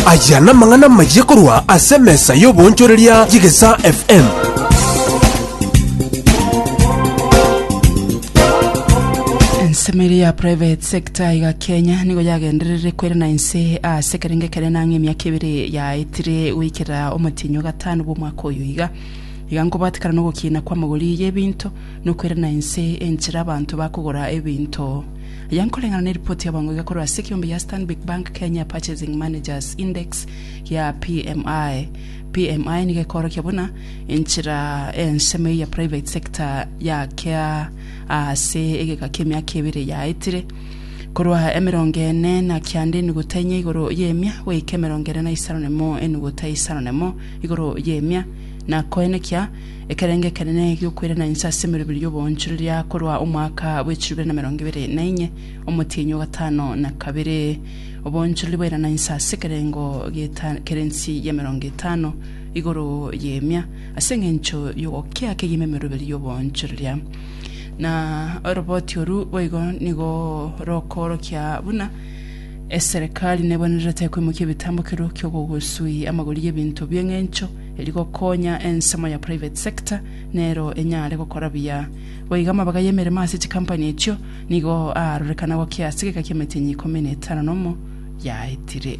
Aya namang'ana amayia korwa ase emesa y'oboonchoreria y'Egesaa FM. Ensemo ere ya private sector iga Kenya nigo yagendererire kwerana inse ase ekerenge kere nang'e emiaka ebere yaetire goikera omotienyi o gatano bw'omwaka oyo iga. Iga nkobwatekana na ogokiina kw'amagori y'ebinto na okwerana inse enchera abanto bakogora ebinto Aya nkoreng'ana ne ripoti ya boongo egekorwa ase ekeombe gia Stanbic Bank Kenya Purchasing Managers Index ya PMI. PMI nigo ekoorokia buna enchera ensemo eya private sector yakea aase egeka ki'emiaka ebere yaetire korwa emerongo ene na kianda enuguta enye igoro y'emia goika emerongo ene na isano nemo enuguta isano nemo igoro y'emia na koenekia Ekerengo ekenene gi'okwerana inse ase emeroberi y'oboonchoreria korwa omwaka bwe chilifu bibere na emerongo ebere na inye, omotienyi o gatano na kabere. Oboonchoreria bwairana inse ase ekerengo gi'eta- kerensi y'emerongo etano igoro y'emia, ase engencho y'ogokea kegima emeroberi y'oboonchoreria. Na oroboti oru boigo nigo rokoorokia buna eserekari nebwenerete koimokia ebitambo kiro ki'ogogosui amagori y'ebinto bi'engencho eri gokonya ensemo ya private sector nero enyare gokora buya. Goika amabaga y'emeremo ase chikampani echio nigo aarorekanagwa ki ase egeka ki'emetinyi ikomi na etano na omo yaetire.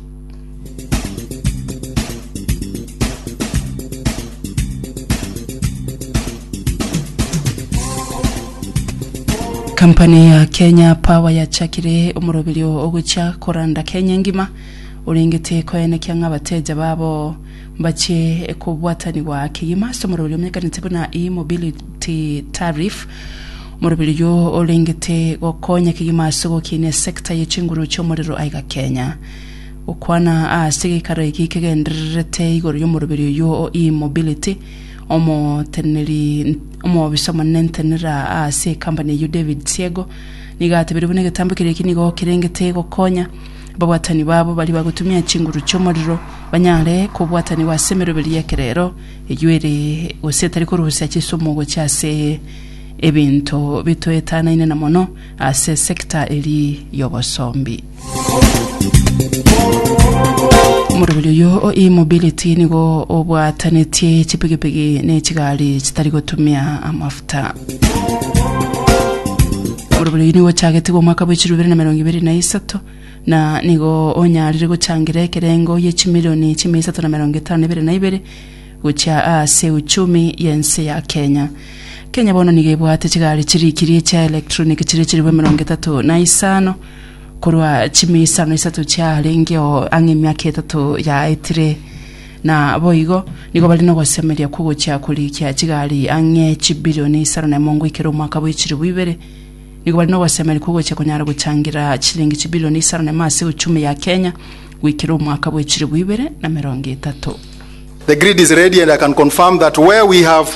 Kampani ya Kenya Power yachakire omoroberio ogochia koranda Kenya engima, orengete koenekia ng'a abateja babo Mbache kobwatanigwa kegima ase omoroberi omenyekanete buna e-mobility tariff. Omoroberi oyio orengete gokonya kegima ase ogokinia esecta ye chinguru chi'omorero aiga Kenya. Gokwana ase geikaro eki kegendererete igoro y'omoroberi oyio o e-mobility, omoteneneri omobisa omonene ntenera ase ekampani eyio David Siego nigo atebirie buna egetambo keria eki nigo kerengete gokonya Babwatani babo baria bagotumia chinguru chi'omorero banyare kobwatanigwa ase emeroberi y'ekerero eyio ere, gose etari korusia chisumu gochia ase ebinto bitoetanaine na mono ase esecta eria y'obosombi. Omoroberi oyio o e-mobility nigo obwatanetie chipigipigi ne chigari chitari gotumia amafuta. Orobori oyio nigo ochagetigwe omwaka bwe chilifu ibere na emerongo ibere na isato, na nigo onyarire gochangira ekerengo ye chimilioni chimia isato na emerongo etano na ibere na ibere gochia aase euchumi y'ense ya Kenya. Kenya bono nigo ebwate chigari chirikirie chia electronic chire chilifu emerongo etato na isano korwa chimia isano na isato chiarengeo ang'e emiaka etato yaetire. Naboigo nigo bare nogosemeria kw'ogochia korikia chigari ang'e chibilioni isano na emongo ikere omwaka bwe chilifu ibere. Nigo bare nogosemeria kw'ogochia konyara gochangira chilingi chibilioni isano na emo ase uchumi ya Kenya goikera omwaka bwe chilifu ibere na merongo etato. The grid is ready and I can confirm that where we have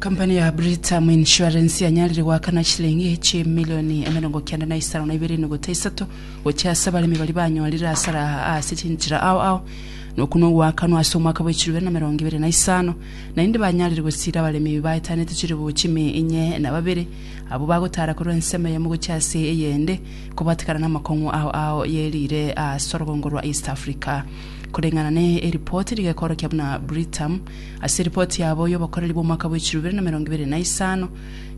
Company ya Britam Insurance yanyarire goakana chilingi chimilioni emerongo kenda na isano na ibere enuguta isato gochia ase abaremi baria banyorire hasara ase chinchera ao ao na okwo nogoakanwa ase omwaka bwa echirobe na emerongo ebere na isano naende banyarire gosiira abaremi baetanete chilifu chimi inye na babere abwo bagotara korwa ensemo eyemo gochia ase eyende kobatekana namakong'u ao ao yerire ase orogongo rwa East Africa koreng'ana ne eripoti rigekorokia buna Britam Ase ripoti yabo y'obokoreri bw'omwaka bwa chilubere na emerongo ebere na isano,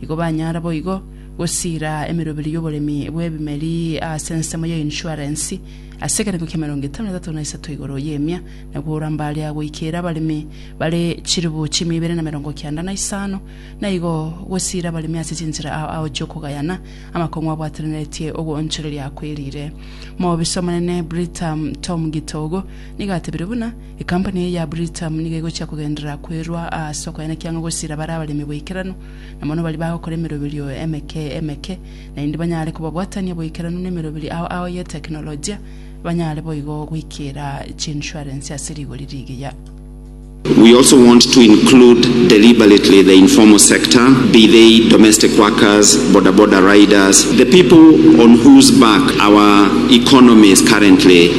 igo banyara boigo gosiira emeroberi y'oboremi bw'ebimeri ase ensemo ya insurance ase ekerengo kia emerongo etano na etato na isato igoro y'emia na kogora mbare ya goikeera abaremi bare chilifu chimia ibere na emerongo kianda na isano, na igo gosiira abaremi ase chinchera ao ao chi'okogayana amakong'u abwatananetie ogoonchoreria kwerire. Moobisomonene Britam Tom Githogo nigo atebire buna, Ekampuni eye ya Britam nigo egochia kogenderera kwerwa ase okoenekia ng'a gosiira bare abaremi boikeranu, na mono baria bagokora emeroberio emeke emeke, naende banyare kobabwatania boikeranu nemeroberio ao ao y'eteknolojia, banyare boigo goikiira chiinsurance ase rigori rigiya. We also want to include deliberately the informal sector, be they domestic workers, bodaboda riders, the people on whose back our economy is currently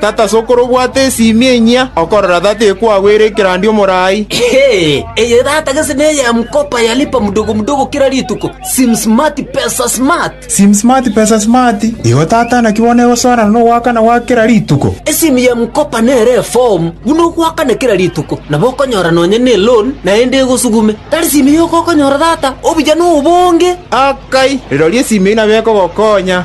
Tata ase okore obwate esiimi enyia, okorora tata ekwagwere ekerandia omorai. Eye tata gese neya mkopa ya lipa mdogo mdogo kera rituko, sim smart pesa smart. Sim smart pesa smart, igo tata naki bono egosoerana nogoakana gwa kera rituko. Esiimi ya mkopa nere efomu buna ogoakana kera rituko, nabo okonyora nonya ne loan naende egosugume. Tari siimi yoka okonyora tata, obuya nobonge. Rirorio esiimi eyio nabo ekogokonya.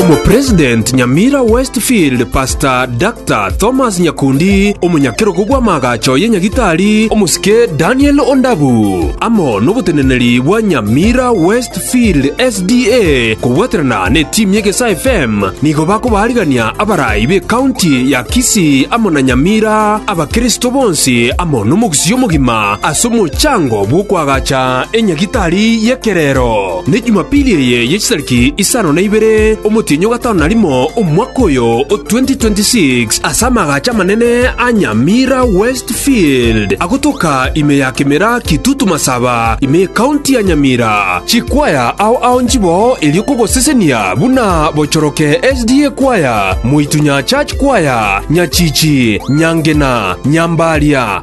Omopresident Nyamira West Field Pastor Dr. Thomas Nyakundi, omonyakerogo bw'amaagacho ye Nyagitari omosike Daniel Ondabu, amo noboteneneri bwa Nyamira West Field SDA kobwaterana ne team ye Gesa FM nigo bakobaarigania abarai be county ya Kisii amo na Nyamira abakristo bonsi amo nomogusii omogima ase omochango bw'okoagacha enyagitari y'ekerero. Ne Jumapili eye ye chitariki isano na ibere omotienyi o gatano na rimo omwaka oyo o 2026, ase amagacho amanene a Nyamira West Field, agotoka ime ya Kemera Kitutu Masaba, ime y'Ekaunti ya Nyamira, chikwaya ao ao nchiboo erio kogosesenia buna Bochoroke SDA Kwaya, Moitunyaa Church Kwaya, Nyachichi, Nyangena, Nyambaria,